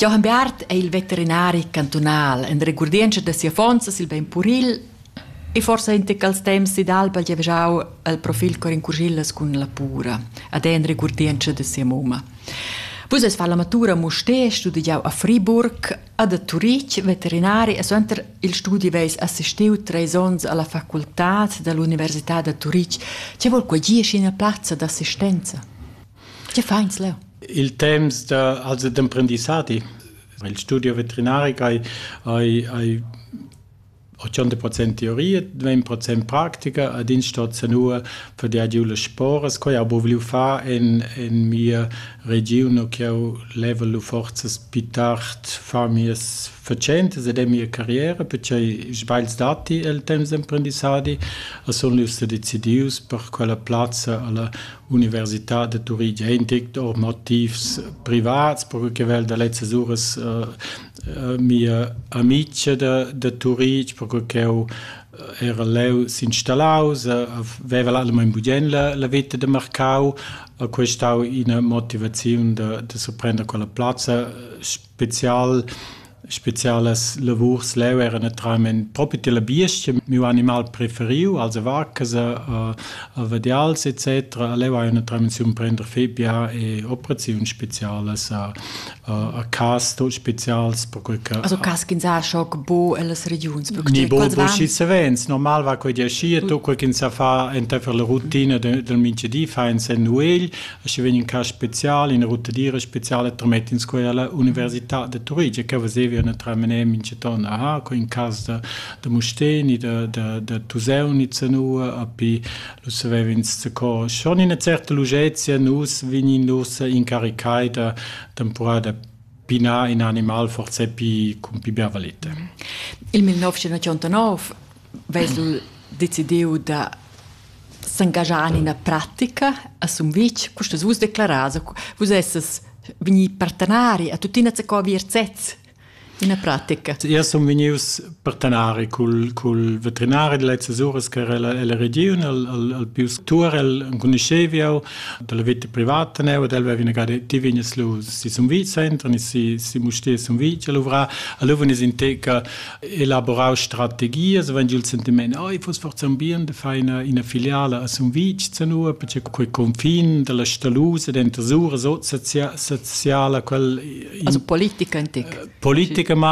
Johann Beat è il veterinari cantunal en regurdientscha da sia fonza sil bein puril e forsa in tec als temps d'alba giavgiau al profil cor in curgillas cun la pura, ad en regurdientscha da sia mumma. Vus es fa la matura Mustè, studiau a Friburg, ad a Turitg, veterinari e suenter il studi veis assistiu treis onns alla facultad dall'Università da Turitg. Che vol quei gie ina plazza d'assistenza? Che fa ins leu? Il temps da, also d'emprendissadi. Il studio veterinaric hai, hai, hai 80% teoria, 20% pratica ad in stat sanua per der giu le sporas quei abo vliu fa en en mia region che ho level forzas più tard fa mies facentas ed è mia carriera perché sbails dati il temps d'emprendissadi a sun lius decidius per quella plazza alla Università da Turitg è in tic or motivs privats, perche che vel da lezzas uras uh, mia amica da, da Turitg, perche ch'eu era leu s'installaus, veva allamain bugien la, la vita de Marcau, a questau ina motivaziun da, da surprender quella plazza spezial spezialas lavurs leu era naturalment propi tilla biestga miu animal preferiu also vacasa a vadials etc leu hai naturalment si prender febia e operaziun spezialas a a cas tot spezials perquei che also cas ch'ins ha schoc bo ellas regiuns ni bo bo schi savens normal va quei di aschi e to quel ch'ins sa fa enteifer la rutina del mingedi fa ins en nuegl E sche vegn in cas special, ina ruttadira speciala, tramett'ins quella alla Università de Turitg, che vesevia naturalmente mincheton, aha, co in cas da, da Musteni, da, da, da Tuseunice nua, a pi lu savev'ins co schon ina certa lugezia nus vegnin nus incaricai da temporada da pinar in animal forse pi, con pi bia valete. Il 1989 vesel decidiu da s'engaschar en ina pratica a Sumvitg, custa vus declaras, vus esses vegni partenari a tuttina co vir sez ina pratica. Io sun vegnius partenari cul, cul veterinari de lezzas uras che era la region, al, al, al pius Turel, enconuscheviau, dalla vita privata neu, ed el veva vinagare, ti vignes lu si Sumvitg, entran si, si Mustie Sumvitg, a luvra, a luvan is inteca elaborau strategias vegn il sentiment ei fuss forsa un bien de far ina, ina filiala a Sumvitg zanua perché quei confin dalla Stalusa dentro sura sociala quel in, also politica in tic politica ma